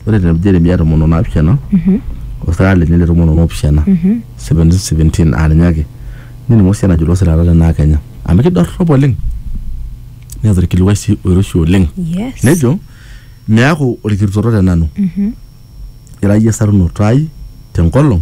Ore te Jeremia tomon o naapishana o sirara lenye le tomon o naapishana 1717 aa ninye ake nening Hosea enajo ilo sirara le naa Kenya amu kidorrop oleng neeta orkilikuai sii oiroshi oleng Yes. nejo miaku orkirutoto te nanu ira iyie esarunoto ai te nkolong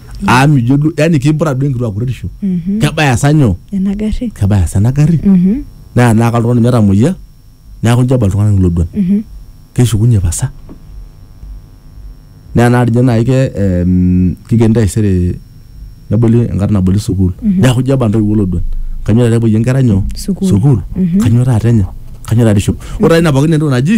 aa mijo duo yani kimpura duo enkituak kuretisho Mhm. kebaya sa nyoo ena garri kebaya sa ena garri Mhm, naa naaka oltung'ani metamoyia neeku injo eba iltung'anak iloduan mhm. keshukunye pasa naa naa tinye naai ke em, kikeni taisere neboli enkata naboli sukuul neeku ijo eba intoiwuo iloduan kanyoo taata epuoyie inkera nyoo Sukuul. sukuul Mhm. kanyoo taata enya kanyoo taata ishopo ore taata ina pookin naa entoki naji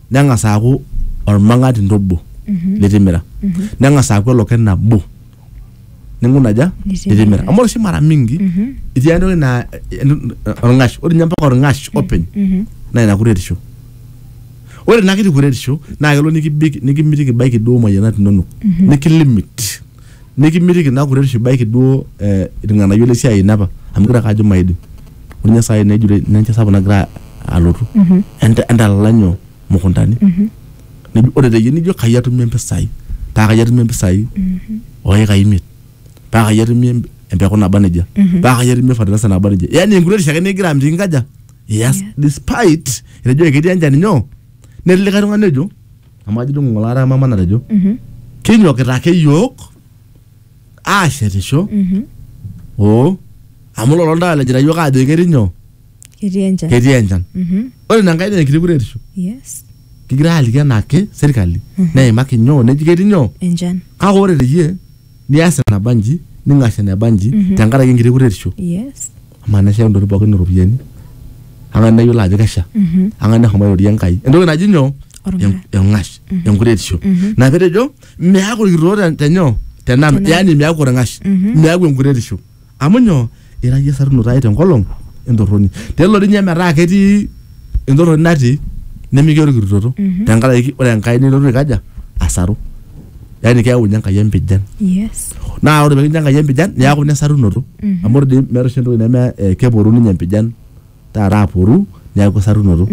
neng'as aaku olmang'atinto obo litimira neng'as aaku eloke nabo ninkuna aja Nitimira. litimira amu ore oshi mara mingi itii entoki naa olng'ash ore ninye mpaka olng'ash openy naa ina kuretisho ore ina kiti kuretisho naa kelo nikibik nikimitiki ibaiki duo moyianat inonok nikilimit nikimitiki naa kuretisho ibaiki duo eh, irng'anayio le siai ino apa amu igira ake ajo maidim ore ninye saai nejito ina enchan sapuk nagira alotu Enta- entalala nyoo mukuntani Nejo- ore teyie nijo kai atumie mpisai paa kai atumie mpisai oikai imiet paa kai atumie em- empeku naba nejia paa kai atumie fertilizer naba nejia yani enkuretisho ake nikigira amitiki nkaja yes despite etejo ketii enchan nyoo netii likae tung'ani ojo amu ajo ng'ole ara mama natejo kinyokita ake yiok aashetisho oo amu lolo ntao lejita yiok aajo ketii nyoo ketii enchan ketii enchan Mhm. ore ina nkae naa enkiti kuretisho yes kigira aaliki enaake serkali neimaki nyoo neji ketii nyoo enchan kake ore teyie nias enaba nji ning'ash eneba nji Mhm. tenkaraki enkiti kuretisho yes amaa nesha intokitin pookin iropiyiani ang'as neyiolo ajo kesha Mhm. ang'as neshomo airorie enkai entoki naji nyoo Orng'ash. En- eng'ash enkuretisho Mhm. na petejo meaku irkitoo te- tenyoo tenanu Tenanu. yani meaku orng'ash Mhm. meaku enkuretisho Amu nyoo? Ira iyie esarunoto ai tenkolong entorroni. Tenelo dii ninye metaa ketii entorroni natii nemikiya orkirutoto tenkaraki ore Enkai nelotu aikaja? Asaru. Yani keyau ninye Enkai empijan. Yes. Naa ore pekincho Enkai empijan niaku ina esarunoto. Amu ore dii meeta oshi entoki neme keporu ninye empijan taata aporu niaku esarunoto.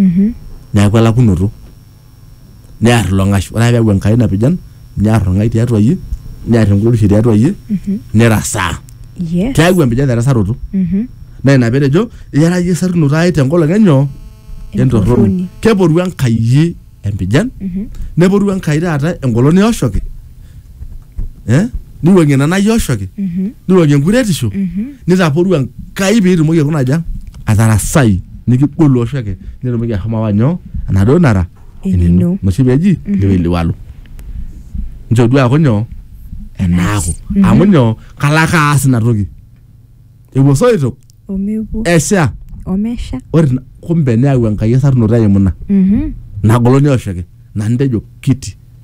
Niaku elakunoto. near ilo ng'ash ore ake peeku enkai napijan near orng'ai tiatua iyie near enkuretisho tiatua iyie nirasaa Yes. keeku empijan erasaroto Mhm. naa ina petejo iyara iyie esarunoto ai tenkolong enyoo entorroni Entorroni. keporu enkai iyie empijan neporu enkai taata engolon eoshoki eh? niwuang'ie ina nayoshoki Mhm. niwuang'ie enkuretisho Mhm. nitaporu enkai piitumoki aikuna aja atarasai nikigolu oshoke nitumoki ahomo awa nyoo enaduo nara Enino. noshi peji liweliwalo nchoo duo aaku nyoo enaaku Mhm. amu nyoo kalo ake aas ina toki epuo soitok Omepuo. esha Omesha. ore ina- kumbe neyau enkai esarunoto eimu ina Mhm. nagoloni oshoke nantejo kiti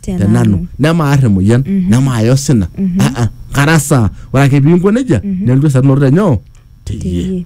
te nanu nemaar emoyian nemaaya osina Ah, ah, kara saa ore ake piinko nejia nelotu esarunoto te nyoo teyie teyie